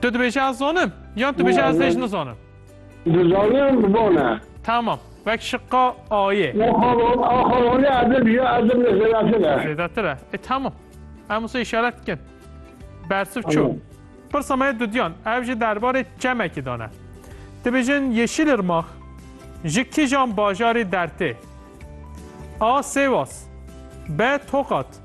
Tu dibêjî ez zanim yan tu bêjî ez hêj nizanim? Dizanim bi van e. Tamam. Wek şiqa A'yê. Axavonê ez ê bijî ez ê zêdetir e. Zêdetir e. E tamam. Em wisa îşaret dikin. Bersiv çû. Pirsa me dudiyan ev ji derbarê çemekî dane. Dibêjin Yeşilirmax ji kijan bajarê dertê? A. Sêwas B. Tokat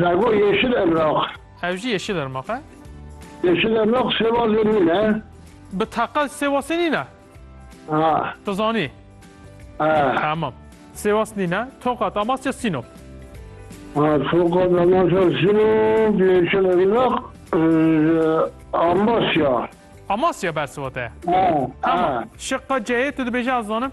Zago yeşil emraq. Ew jî yeşil ermaq e. Yeşil emraq sêwazê min e. Bi teqe sêwasê nîn e? Ha. Tu zanî? Tamam. Sêwas nîn e. Tokat, Amasya, Sînop. Ha, Tokat, Amasya, Sînop, yeşil emraq, Amasya. Amasya bersiva te ye? Ha. Tamam. Şiqa C'yê tu dibêjî ez zanim?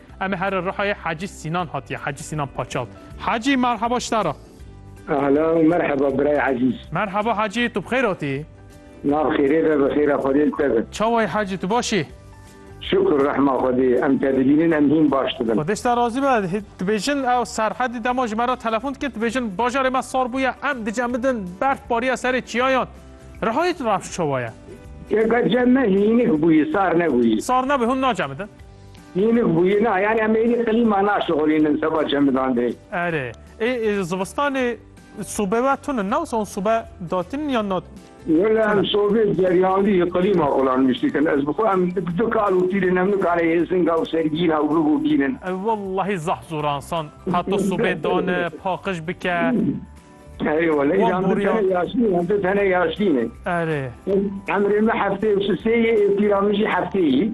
Em ê here Rihayê Hacî Sînan hatiye Hacî Sînan Paçal. Hacî merheba ji te re. Ahlan û merheba birayê ezîz. Merheba Hacî tu bi xêr hatî? Na bi xêrê be bi xêra Xwedê li te be. Çawa yî Hacî tu baş î? Şukr rehma Xwedê em te dibînin em hîn baş dibin. Xwedê ji te razî be. Dibêjin ew Serhedî dema ji me re telefon dikir dibêjin bajarê me sar bûye em dicemidin berf bariye serê çiyayan. Rihayê tu rewş çawa ye? Te ka cem me hînik bûyî sar nebûyî. Sar nebûyî hûn nacemidin. Hînik bûyî na yanî em êdî qilîma naşixulînin seba çemidan de. Erê ê zivistanê sobe we tune ne wisa hûn sobe datînin yan na tune? Wela em sobê geriyandî ji qilîma xulan niştikin. Ez bi xwe em du kal û pîlin em nikane yê singa û sergîna û biv û bînin. Wellahî zeh zor a însan heta sobê dane paqij bike. Erê wele îjan tu tene yaşîn î em tu tene yaşîn î. Erê. Emrê me heftê û sisê yê ê pîra min jî heftê yî.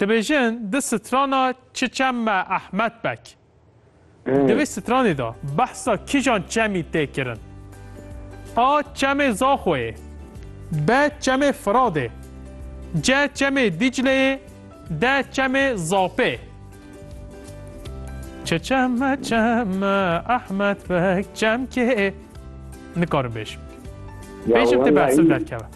Dibêjin di strana çi çem me Ehmed Bek. Di vê stranê de behsa kîjan çemî tê kirin? A çemê Zaxoyê, B çemê Firadê, C çemê Dîcleyê, D çemê Zapê. Çi çem me çem me Ehmed Bek çem kê? Nikarim bêjim. Bêjim tê behsil derkeve.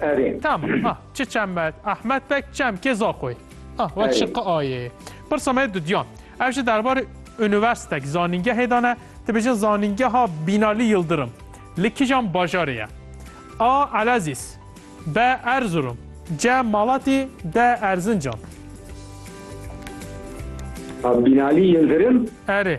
Erê. Tam ah çi çemet Ahmet pek çem kê zaxoy ah wek şi qi ayê. Pirsa me dudiyan ev ji derbarê unîverstek zanîngehê de ne dibêjin zanîngeha Bînalî Yildirim li kîjan bajarê ye? A Elezîz B Erzurum C Malatî D Erzincan. Bînalî Yildirim? Erê.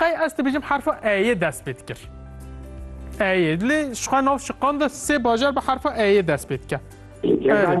Qey ez dibêjim herfa Eyê dest pê dikir. Eyê. Lê şixwe nav şiqan de sê bajar bi herfa Eyê dest pê dike. Erê.